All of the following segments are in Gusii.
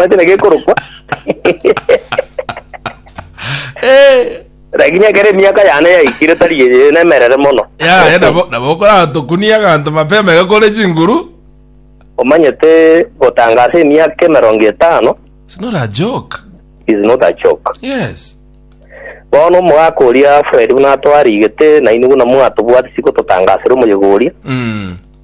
Omanyete na gekorokwa. Eh, Lakini ekero emiaka yane yaikire tari eye nemerere mono. yaya nabo nabo okoratokunia aganto mapema iga kore chinguru Omanyete gotangasa emiaka emerongo etano It's not a joke is not a joke. yes Bono omogaka oria Fred buna atwarigete na inwe buna mwatobwati siko totangasire omoyegoria. mm.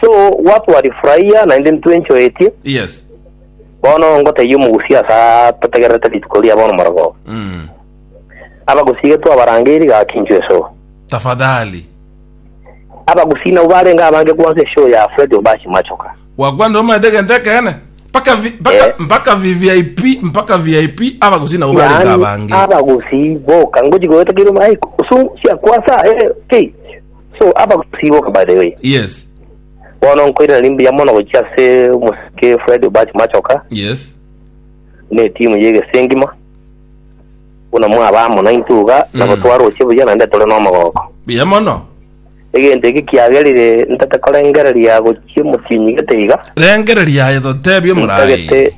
So what twarifurahia naende ntwenchoetie, Yes. bono ngotebia omogusi ase atategererete rituko ria bono morogoo. Mm. Abagusi iga twabarangeirie gaki inchwe esoo. Tafadhali. Abagusi nabo barenge abange gwansa esoo ya Fred Obachi Machoka. Wakwanda omanyete egento ekeene. Mpaka vi- mpaka Eh. mpaka VVIP, mpaka VIP abagusi nabo barenge Yaani abange. abagusi boka ngochi goetekeirwe maiko osu siakwansa eh, ki So abagusi igo by the way. Yes. Bono nkoirana ni mbuya mono gochia ase omosike Fred Obach Machoka Yes. ne timu ye egese engima. Buna mwaba amo naintwe iga nabo Mm. twaroche buya naende tore n'omogoko. Buya mono. Egento eke kiagerire ntate korengereria gochia omotienyi gete iga. Rengereria aye totebie omorai. Ntagete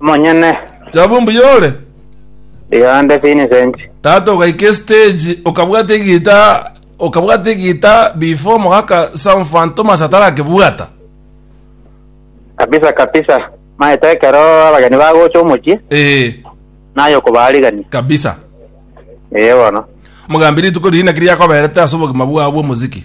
Monyene. Jabu mbuya ore? Yonde Vincent. Tata okaika estage okabwata egita okabwata egita before mogaka Sam Fan Thomas atarakebwata. Kabisa kabisa. Maete ekero abageni bagocha omochie. Eh. Naye okobarigania. Kabisa. Eh bono. Mogambi rituko riria naki riakoberete ase obogima bwao bw'omoziki?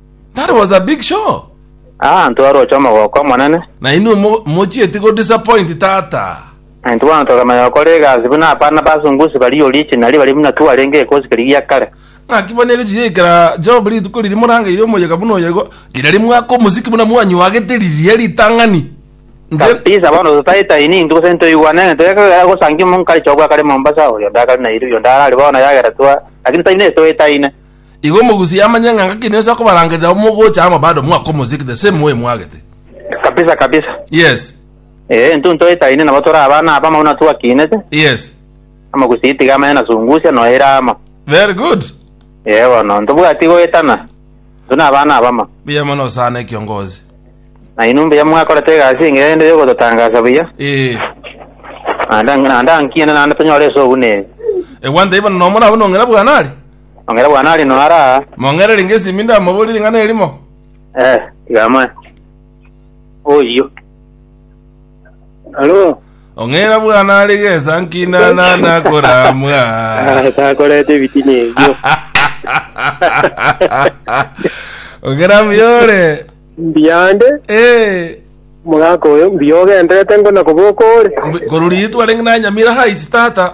That was a big show. Ah, ntwaroche omogoko omonene. Na inwe mo- mochieti go disappoint tata. Na intwe bono tokamanya gokora egasi buna abana basungusi baria original baria buna twarenge gekosi keria gia kare. Ng'aki bono erio chiyaikera Job rituko riria morangeire omoyega buna oyego, riria rimwaka omosiki buna mwanyuagete riria ritang'ani. Nche- Kabisa bono totaitaini intwe gose ntoigwane ng'a toyaka gosangia omonkari chobwa kare Mombasa oyo ndakare Nairobi oyo ndarari bono yagera twa lakini taine etoetaine. Igo omogusi yamanye ng'a ngaki nense akobarangerera mogocha amo bado mwakomosik the same way mwagete. Kabisa kabisa. Yes. Eh, intwe ntoetaine nabo tore abana abamo buna twakinete. Yes. Omogusi itiga amanye na sungusia noyo ere amo. Very good. Eh bono ntobwati goetana. Intwe na abana abamo. Buya mono sana ekiongozi. Na inwe mbuya mwakorete egasi engiya rende yogototangasa buya. Eh. Naende naende ankiene naende tonyore ase obunene. Egwanta ibo nomora abwo nong'ina bwanari. Mong'era bwane are noyo ara aa. Mong'era renge esimi ndamoborie ring'ana erimo. Eh, tiga amoe. Oyio. Alo. Ong'era bwane are gesa nkina na nakoramwa. Ah, takoreta ebitina ebio. Ong'era muyore. Mbiyande, Eh, omogaka oyo, mbiyogenderete ngona koboka ore. mbi- korwa riitwa renge nanyamira Heights tata.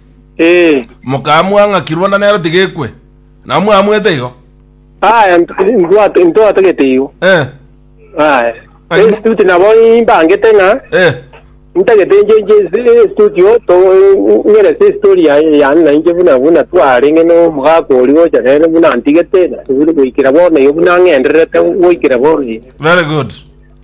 Ee. Mokamua ng'a kironda nero tigekwe. Nao mwamuete igo? Aya, ntwate, ntwatagete igo. Eh. Aya. Ai- Estuti nabo imbangete ng'a Eh. ntagete inche inche estutio to ngerese isitori ya yani na inche buna buna twarenge no mugaka ori gocha nere buna antigete na tubiri goikira bono igo buna ng'endererete goikira bono igo. Very good.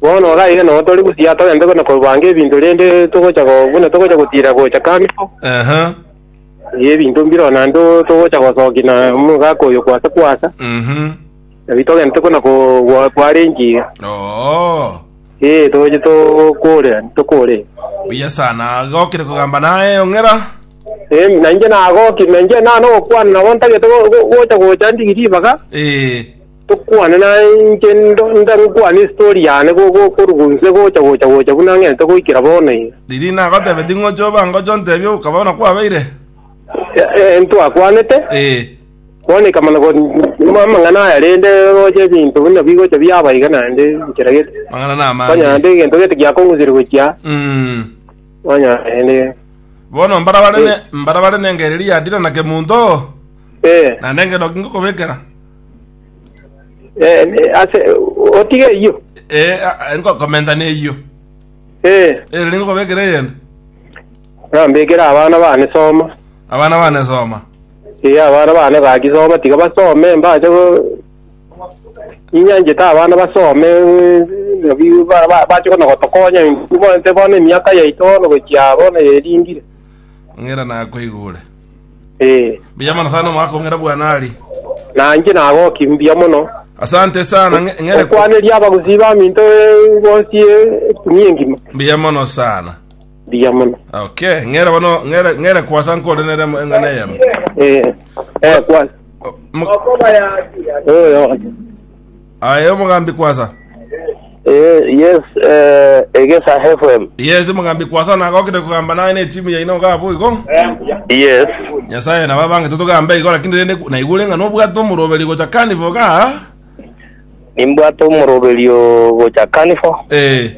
Bono oraire noo tore buya, togende buna kobanga ebinto rende togocha go- buna togocha gotira gocha Karifu, Aha. ee, ebinto mbireo naende togocha gosokia na omogaka oyo kwasa kwasa, Mhm. nari togente buna ko- gwa- kwarengi, Oo. ee, togoche tokore, tokore. Buya sana. Gokire kogamba naye ong'era. Ee, na inche nagoki, na inche nano gokwana nabo ntagete go- go- gocha gocha ndigiri ribaga, Ee. Tokwane naye inche ndore gokwana estori yane korwa inse gocha gocha gocha buna ng'ente goikera bono ee. Riria nagotebeti ng'oche obe anga oche ontebie oka bono kwabeire. Ee, ntwakwanete. Ee. Bono ikamana kori amang'ana aya rende roche ebinto buna bigocha biaba iga naende inchera gete. Amang'ana na amage. Onye naende egento gete giakong'usire gochia. Mm. Onye naende. Bono mbara bare ne mbara bare nengeri riadira na kemunto. Ee. Naende eng'enoki ngokobekera. Eh, ne- ase otiga eyio Eh, ah, nkokomenta neyio Eh, ere ningokobekera eyende nambekere abana bane soma abana bane soma Eh, abana bane gaki soma tiga basome mbache go- inyanchete abana basome eh, nabi- ba- ba- bache kono gotokonya bonte bono emiaka yaito bono gochia bono yerindire ng'ira nakoigure Eh, mbuya mono sana omwaka ong'ira bwana ari nanje nagoki mbuya mono. asante sana ng'e- ng'ere ku- Okwaneria abagusii ba minto eh, bonsi eh, etunia engima. mbuya mono sana Mbuya mono. okay ng'ere bono ng'ere ng'ere kwasa nkore nere mo- eng'ana eyemo Eh, eh, kwa. O- mo- Oyo. Aye omogambi kwasa. Eh, yes, eh, egesa FM. Yes, omogambi kwasa nagokire kogamba naye ne timu yaino iga abo igo. Yes. Nyasaye na babange totogambe igo lakini rende naigure ng'a nobwate omoroberi gocha carnival ga. Nimbwate omoroberio gocha Carnival. Eh.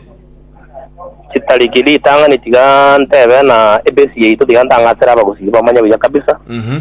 Chitariki ritang'ani tiga ntebe na ebesi yaito tiga ntang'atere abagusii bamanye buya kabisa. Mhm.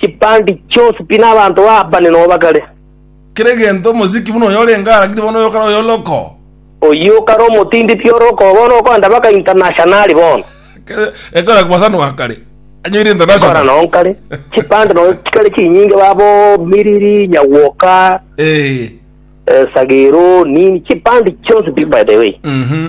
chipandi chionsi pi nabanto ba abane nobakare. Kera egento omosiki buna oyo orenge aragite bono oyokare oyo orokoo. Oyio okare omotindi pi orokoo bono okoenda baka internationali bono. Ekora kwasanwa akare anyoire international. Ekora noo nkare chipandi noo chikare chinyinge babo miriri nyagwoka Ee. esagero nini chipandi chionsi pi by the way. Mhm.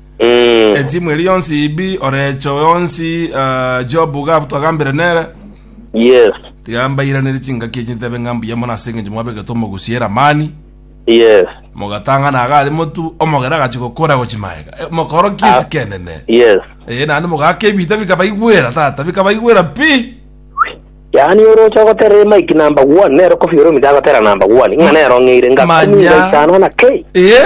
Eh. Etimu eri yonsi ibi orecho yonsi ah, Job Ugabu twagambire nere Yes. tiga mbairanere chingaki echi ntebe ng'a mbuya mono ase eng'encho mwabegete omogusi Eramani Yes. mogatang'ana iga are motu omogera agachi gokora gochi maega Eh, mokoro ki ase kenene Yes. Eh, naende mogaka ebita bikabaigwera tata bikabaigwera pi Yaani orocha goterera Mike number one nero Koffi Olomide agotera number one ng'a nero ng'eire ngakumira Manya. isano na kei. Eh?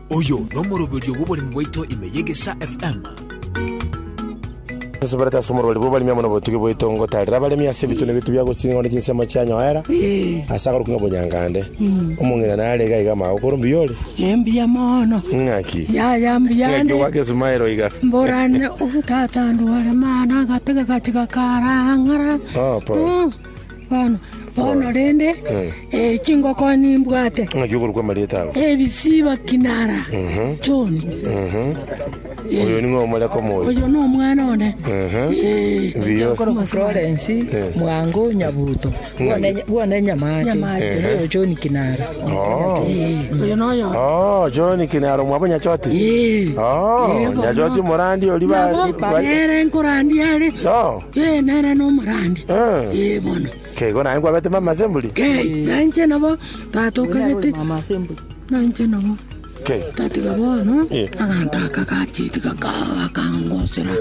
Oyo nomoroberio bw'oboremi bwaito ime y'Egesaa FM. Nseseberete ase omorweri bw'oboremi amo nobotugi bwaito ngotaarera abaremi ase ebitune biaito bia gosinga one chinsemo chianyoera ase akorokigwa ng'a Obonyangande. Omong'ina nare iga iga amaago kore mbuya ore. Embuya mono. Ng'aki? Yaya mbuya Ng'aki ande. ogwaka esumaero iga? Mborane obutata ndware mana gatege gatiga karang'ara. Oh, Paul. Bono, bono rende, ee, chingoko nimbwate, ng'aki okorwa kw'amarieta abo ebisiba kinara Mhm. choni. oyo ning'o omore komoyo Oyo nomwana one. Ee, biyo Korokwa Florence Eh. mwango nyabuto Bwone- bwone nyamache Nyamache. Oyo John kinara Oh. Ee, oyo noyo. Oh, John kinaro mwabo nyachoti Ee. Oh, Ee, bono. nyachoti morandi ori ba- Nabo, ba- ere nkorandia are. Oh. Ee, nere nomorandi. Ee, bono. Okay, igo naye nkwabete mama ase emburi? Kei, na inche nabo tata okagete. Na inche nabo. Okay. Tatiga bono, Eh. aganta aka gacheti gaka gakangosera.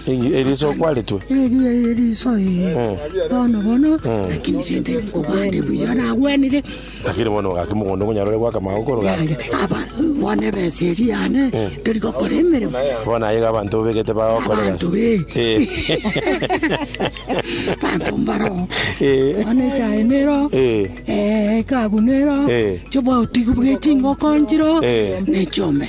Ingi- eriso kwaretwe Eri eri riso ee. Mm. Bono bono, lakini rende nkobande buya nagwenire. Lakini bono ogaka mogondo ngonyare ore goaka amaago korwa gare. Yaye, aba bono ebesa eri yane Eh. tori gokora emeremo Bono aye iga abanto obegete bagokorera. abanto be Eh. banto mbaro Eh. bono esaye nero Eh. eh, ekabu nero Eh. chobwautigi bwechingoko nchiro Eh. nechombe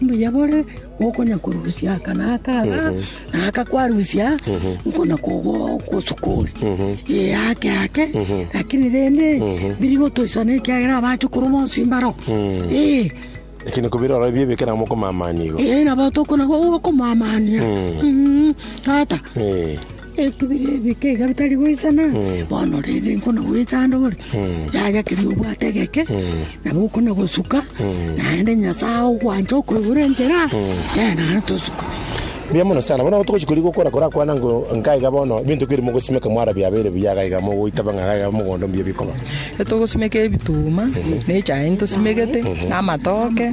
Mbuya bore okonyakorusia aka na aka iga, na aka kwarusia nkona kogosukori ee ake ake lakini rende biri gotoisana ekiagera abachukuru bonsi mbaro ee Lakini kubira ora ebio ebeke na mokomamani igo. ee nabo tokona gokomamania Mm, tata Eh. Ekebire ebike iga bitari goisana, bono rende nkona goetsa ande ore, yaya keria obwate egeke, nabo okona gosuka, naende Nyasae ogwancha okoigure enchera, ee, naende tosuke. Mbuya mono sana. Bono togochi koria gokora korakwana ng'o nka iga bono ebinto biri mogosimeka mwara biabeire buya iga iga mogoitaba ng'a iga iga mogondo mbuya bikoba. Togosimeka ebituma, na echae ntosimegete, na amatoke.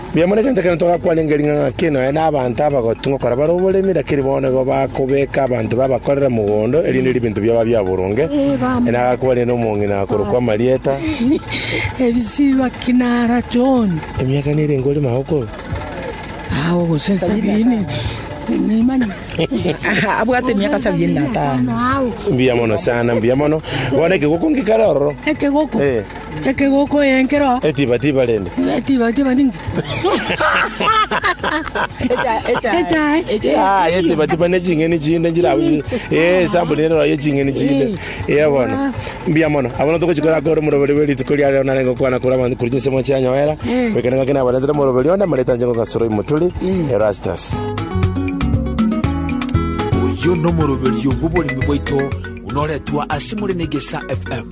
Mbuya mono egento ekero togakwana engerii ng'a ng'ake nonya nabaanto abagotu ngokora bare oboremi, rakini bono nigo bakobeeka abanto babakorere mogondo, erinde ebinto biabo bia boronge, na agakwanire nomong'ina akorokwa Marieta. Ebisiba kinara John. Emiaka nere enga ore magokoro? Awo gose sabini. Nimanya. Abwate emiaka sabini na tano. Mbuya mono sana, mbuya mono. Bono ekegoko ngikare ororo. Ekegoko. Eh. Ekegoko y'enkero. Etibatiba rende. Etibatiba ninki? Echae. Ah, etibatiba ne ching'eni chinde nchirabuchi. Eh, sample nero ya ching'eni chinde. Eh, bono. Mbia mono. Abono tokochikora akore moroberi bwe rituko ria rero nare ngokwana kora abantu kuri chinsemo chianyoera. Wekene ng'ake nabaretera moroberi onde amareta nche ngogasoro imoturi. Erastus. Oyio nomoroberio bw'oboremi bwaito buna oretwa ase more na egesa FM.